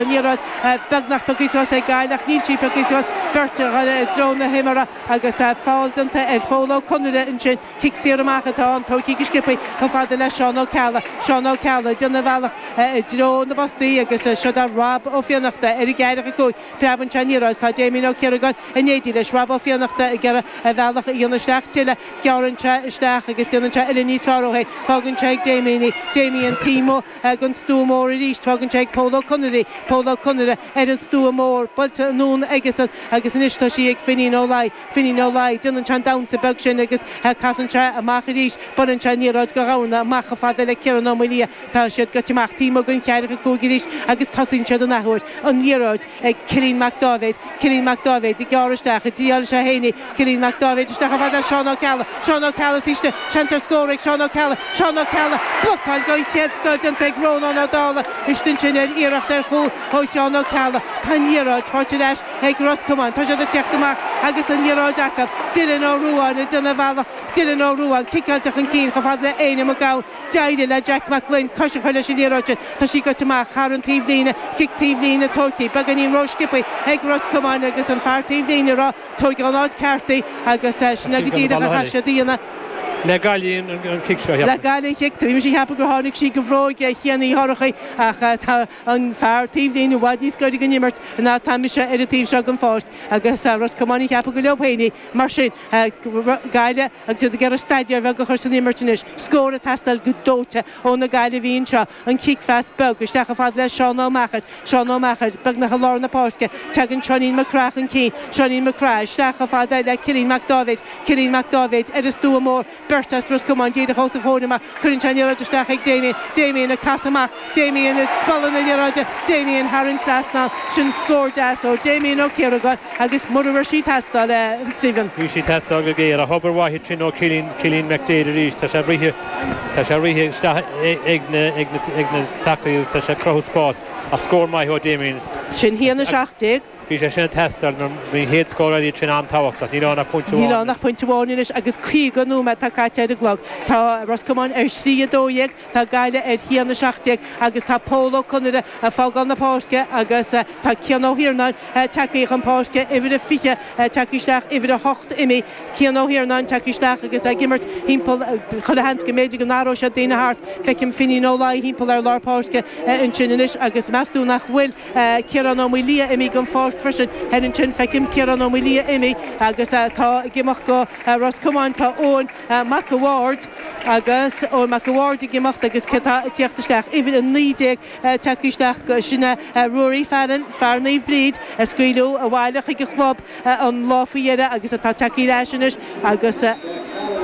An liathróid beagnach piocthaí suas ag Gaillimh ach níl sí piocthaí suas, beirt ag goil i dtreo na himeartha agus feall déanta ar Phól Ó Conaire ansin. Cic saor amach atá ann, tóigthí go sciopthaí chomh fada le Seán Ó Ceallaigh. Seán Ó Ceallaigh ag déanamh a bhealach i dtreo na bpostaí agus seo do Rob Ó Fiannachta ar an gceathracha cúig. Preabann sé an liathróid is tá Damien Ó Ciaragáin in éindí leis. Rob Ó Fiannachta ag iarraidh a bhealach a dhéanamh isteach tuilleadh. Gearann sé isteach agus déanann sé uillinn níos fearr dó féin. Fágann sé ag Damien í. Damien taobh amuigh den stua mór arís, fágann sé ag Pól Ó Conaire í, Pól Ó Conaire, ar an stua mór, buailte anonn aigesan agus anois tá sí ag Finín Ó Laoi, Finín Ó Laoi. Déanann sé an damhsa beag sin agus casann sé amach arís, buaileann sé an liathróid go domhain amach chomh fada le Ciarán Ó Maoilia. Tá siad gaibhte amach taobh amuigh den cheathracha cúig arís agus tosaíonn siad an athuair. An liathróid. ag Cillín Mac Dáibhéid, Cillín Mac Dáibhéid ag gearradh isteach an dtriailfidh sé fhéin í, Cillín Mac Dáibhéid isteach chomh fada le Seán Ó Ceallaigh, Seán Ó Ceallaigh taobh istigh, seans ar scór ag Seán Ó Ceallaigh, Seán Ó Ceallaigh, blocáil den chéad scoth déanta ag Rónán Ó Dálaigh istigh ansin ar iarracht ar chúl ó Sheán Ó Ceallaigh, tá an liathróid faighte ar ais ag Ros Comáin, tá siad ag teacht amach agus an liathróid acu, Dylan Ó Ruáin ag déanamh a bhealach, Dylan Ó Ruáin, ciceáilte chun cinn chomh fada le Éanna Mac Gabhann, D'éirigh le Jack Mac Gloinn cois a chur leis an liathróid sin. Tá sí gaibhte amach thar an taobhlíne, cic taobhlíne, tóigthí beagáinín ró-sciopthaí ag Ros Comáin agus an fear taobhlíne ag rá tóig ón áit cheart í agus sin é go díreach a chaithfidh siad a dhéanamh. Le Gaillimh an cic, tar éis a cheapadh gur tháinig sí de bhróig Chéin Uí Dhorchaí ach tá an fear taobhlíne i bhfad níos gaire don imirt ná atá mise ar an taobh seo den pháirc agus Ros Comáin ag ceapadh gur leo féin í. Mar sin, Gaillimh. Agus iad ag iarraidh staidéar bheag a chur san imirt anois, scór ag teastáil go dóite ó na Gaillimhigh anseo, an cic-phas beag isteach chomh fada le Seán Ó Meachair, Seán Ó Meachair, beagnach i lár na páirce, teagann Seáinín Mac Craith chun cinn, Seáinín Mac Craith, isteach chomh fada le Cillín Mac Dáibhéid, Cillín Mac Dáibhéid, ar an stua mór, beirt as Ros Comáin díreach os a chomhair amach, cuireann sé an liathróid isteach chuig Damien, Damien ag casadh amach, Damien ag bualadh na liathróide, Damien thar an trasnán, sin scór deas ó Damien Ó Ciaragáin agus mura raibh sí ag teastáil a Stephen. Bhí sí ag teastáil go géar, ach obair mhaith ansin ó Cillín, Cillín McDaid arís, tá sé ag rith, tá sé ag rith isteach ag na, ag na, ag na tacaí agus tá sé ag cruthú spás, ach scór maith ó Damien. Sin 1-17. Bhí sé sin ag teastáil mar bhí an chéad scór eile sin an-tábhachtach. Níl ann ach pointe amháin anois. Níl ann ach pointe amháin anois agus 50 nóiméad atá caite ar an gclog. Tá Ros Comáin ar 3-12. Tá Gaillimh ar a haon a seacht déag agus tá Pól Ó Conaire ag fágáil na páirce agus tá Cian Ó hIarnáin teagthaí chun páirce uimhir a 20 teagthaí isteach uimhir a hocht imithe Cian Ó hIarnáin teagthaí isteach agus ag imirt thimpeall chuile sheans go mb'fhéidir go n-athróidh siad daoine thart feicim Finín Ó Laoi thimpeall ar lár páirce ansin anois agus meas tú nach bhfuil Ciarán Ó Maoilia imithe den pháirc freisin thoir ansin feicim Ciarán Ó Maoilia imithe agus tá ag imeacht do Ros Comáin tá Eoin Mac a Bhaird agus Eoin Mac a Bhaird ag imeacht agus cé atá ag tíocht isteach? Uimhir a naoi déag tagtha isteach, sin é Ruairí Fallon, fear Naomh Bríd a scaoileadh abhaile chuig a chlub an lá faoi dheireadh agus atá tagtha ar ais anois agus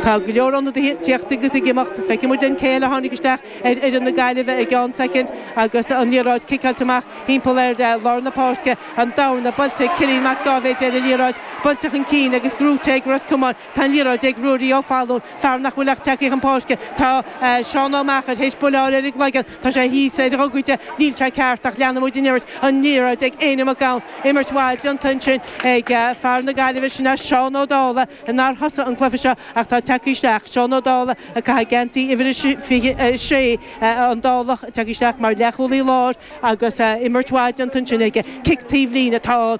tá go leor ionadaithe ag tíocht agus ag imeacht. Feicfidh muid linn cé eile a tháinig isteach ar fhoireann na Gaillimhe i gceann soicind agus an liathróid ciceáilte amach thimpeall ar lár na páirce. An dorna buailte ag Cillín Mac Dáibhéid ar an liathróid, buailte chun cinn agus gnóite ag Ros Comáin. Tá an liathróid ag Ruairí Ó Fallúin, fear nach bhfuil ach tagtha chun páirce. Tá Seán Ó Meachair théis buille a fháil ar an gcloigeann. Tá sé thíos ar a ghogaide. Níl sé ceart ach leanfaidh muid an imirt. An liathróid ag Éanna Mac Gabhann. Imirt mhaith déanta ansin ag fear na Gaillimhe, sin é Seán Ó Dálaigh, nár thosaigh an cluiche seo ach tá tagtha isteach. Seán Ó Dálaigh ag caitheamh geansaí uimhir a 26. An Dálach tagtha isteach mar leathchúlaí láir agus imirt mhaith déanta ansin aige. Cic taobhlíne atá ann.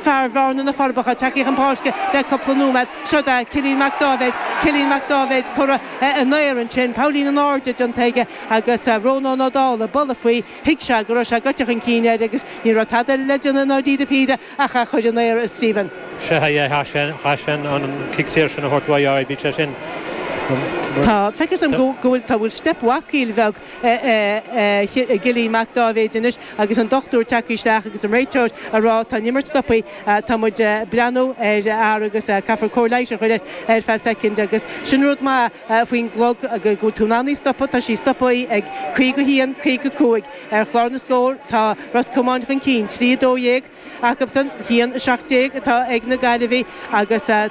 Fear Bhearna, Na Forbacha, tagtha chun páirce le cúpla nóiméad. Seod é Cillín Mac Dáibhéid. Cillín Mac Dáibhéid curtha in aer ansin, poillín in airde déanta aige agus Rónán Ó Dálaigh ag bualadh faoi. Thuig sé go raibh sé goite chun cinn air agus ní raibh tada eile le déanamh i ndáiríre píre ach é a chuir in aer. Stephen. Sea, chaith sé, chaith sé an an cic saor sin a thabhairt uaidh. Bhí sé sin. Tá, feictear dom go bhfuil, tá, bhfuil steip bhacaíl bheag. ar Chillín Mac Dáibhéid anois agus an dochtúir tagtha isteach agus an réiteoir a rá tá an imirt stoptha, tá muid a' breathnú ar a fhear agus caithfear cóir leighis a chuir air ar feadh soicind agus sin rud maith faoin gclog go bhfuil tú in ann í stopadh, tá sí stoptha ag caoga a haon, caoga a cúig. Ar chlár na scór tá Ros Comáin chun cinn, trí a dó dhéag acusan, haon a seacht déag atá ag na Gaillimhigh agus.